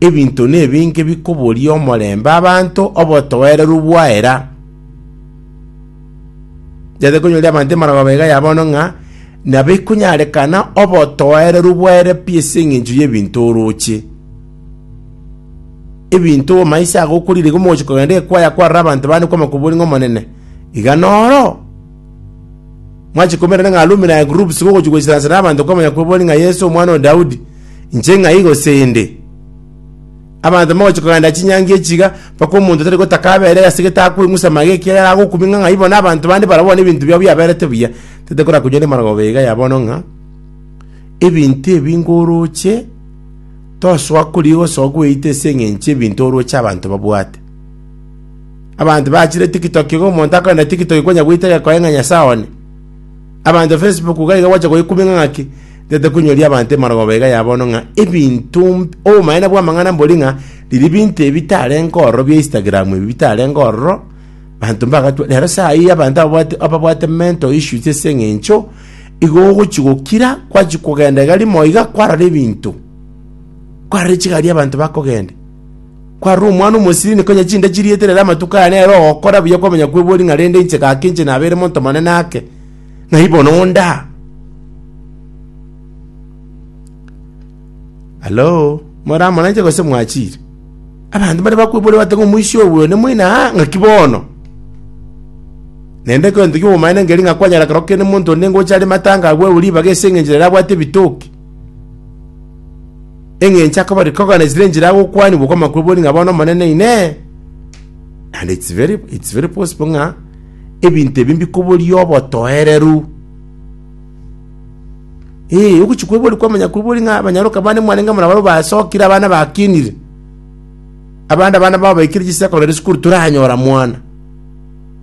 Ebinto nebinge bikoboria omorembe abanto obotoereru bwaera. Nchete konyoria abanto emarogaba iga ya bono ng'a nabo ikonyarekana obotoereru bwaera pi ase eng'encho y'ebinto oroche. Ebinto obomaiso ago okorire iga omogochi kogenda ekwaya kwarora abanto bande kwama koboria ng'a Omonene, iga noro? Mwachikumera ng'a Rumi na Gurubi sibogochia goisera ase nabanto kwamanya kw'ebori ng'a Yeso omwana o Daudi, inche ng'ai gose inde? Abanto mbagochia kogenda chinyangi echiga, mpaka omonto tari gotaka aberee ase getakwa eng'usa mage ekiagera agokumia ng'a ng'ai bono abanto bande barabwo bono ebinto biabo biaberete buya, tetekora koigwa nemarogoba iga ya bono ng'a, Ebinto ebi ngoroche, tosoa korigia gosoa gweita ase engencho y'ebinto oroche abanto babwate. Abanto bachire tiktok iga omonto akorenda tiktok konya goita gekoe ng'a Nyasae one. Abanto Facebook iga iga gwacha goikumia ng'a ng'aki ntete koinyoria abanto emarogooba iga ya bono ng'a ebinto mb- obomaene bw'amang'ana mbori ng'a riria ebinto ebi bitarenge ororo bia Instagram ebi bitarenge ororo banto mbagatwa rero saa hii abanto ababwate ababwate mental issues ase eng'encho igo ogochi gokira gwachi kogenda iga rimo iga kwarora ebinto kwarora chigari abanto bakogenda Kwarora omwana omosibini konya chinda chirieterere amatuko aya nere ogokora buya kwamanya kwebori ng'a rende inche gaki inche nabeire monto monene ake ng'ai bono onda Halo moramoranche gose mwachire abanto mbare bakwebori bate ng'a omoisia oyo bwene moino aa ng'aki bono naende egento ki'obomaene nkeri ng'a kwanyara kero kende monto onde ngocha are matanga agwewu ribaga ase engencho nere abwate ebitoki eng'encho akobari kogana esire enchera agokwani boko amakuru bori ng'a bono omonene ine and it's very, it's very possible ng'a ebinto ebi mbikoboria obotoereru ee ogochi kwebori kwa amanyakuru bori ng'a abanyaroka bane mwarenge muna baro basokire abana bakinire abande abana babaikire chisakore sukuru toranyora mwana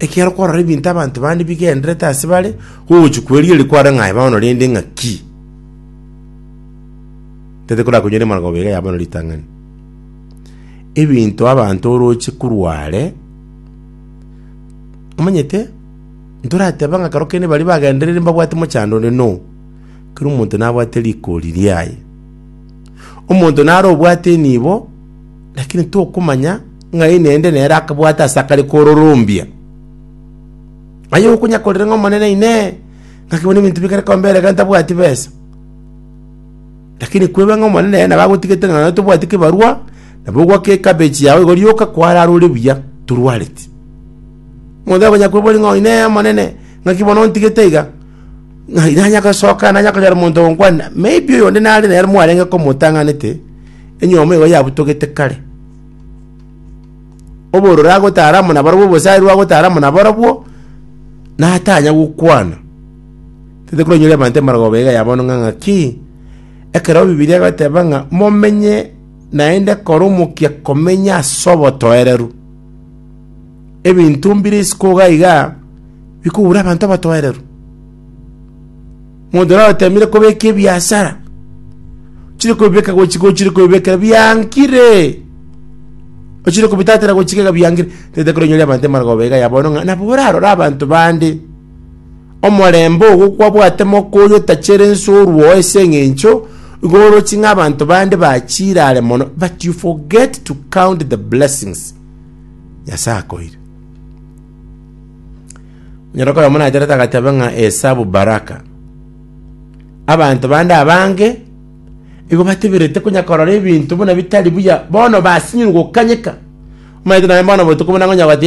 Ekiagera kwarora ebinto abanto bande bigendererete ase bare, ogochia kwerigereria kwarore ng'a aye bono rende ng'aki. Tari korakonyora emarababo iga ya bono ritang'ani. Ebinto abanto oroche korwa are, omanyete, ntorateba ng'a ekero kende baria bagendererire mbabwate mochando onde, no. Kera omonto nabwate rigori riaye. Omonto naro obwate enibo. Lakini tokomanya ng'ai nende nere akabwate ase akare kororombia. Aye okonya korera ng'a Omonene Inee! Ngaki bono ebinto bikare koba mbere ekero ntabwati besa? Lakini kwebe ng'a Omonene nere nabo agotigete ng'a nonya tobwati kebarwa, nabo ogwake ekabechi yao igo rioka kwararore buya, torwareti. Omonto takonya kwebori ng'a Inee Omonene, ng'aki bono ontigete iga? Ng'ai nanya gosoka nanya konyora omonto ogonkwana? Maybe oyonde nare nere mwarenge komotang'anete. enyomo igo yabutogete kare. Obororo agotara amo nabarobwo, obosarwa agotara amo nabarobwo, natanya gokwana. Tete koronyora abanto emerogoba iga yabono ng'a ng'aki, ekero Bibilia egoteba ng'a momenye naende kore omokia komenya ase obotoereru. Ebinto mbire isiko iga iga bikogora abanto obotoereru. Monto naro otemire kobeka ebiasara, ochire kobibeka gochika ochire kobibekera biankire. Ochire kobitatera gochika iga biankire. Tete korenyoria abanto emargoba iga ya bono ng'a nabo orarore abanto bande. Omorembe ogo kwabwate moka oyo otachere ensorwa oo ase eng'encho igo orochi ng'a abanto bande bachire are mono but you forget to count the blessings Nyasae akoire. Onyare koba monacherete agateba ng'a esabu baraka. Abanto bande abange igo bateberete konya korora ebinto buna bitari buya bono basinyirwe gokanyeka. Omanyete naye bono botuko buna ngonya goteba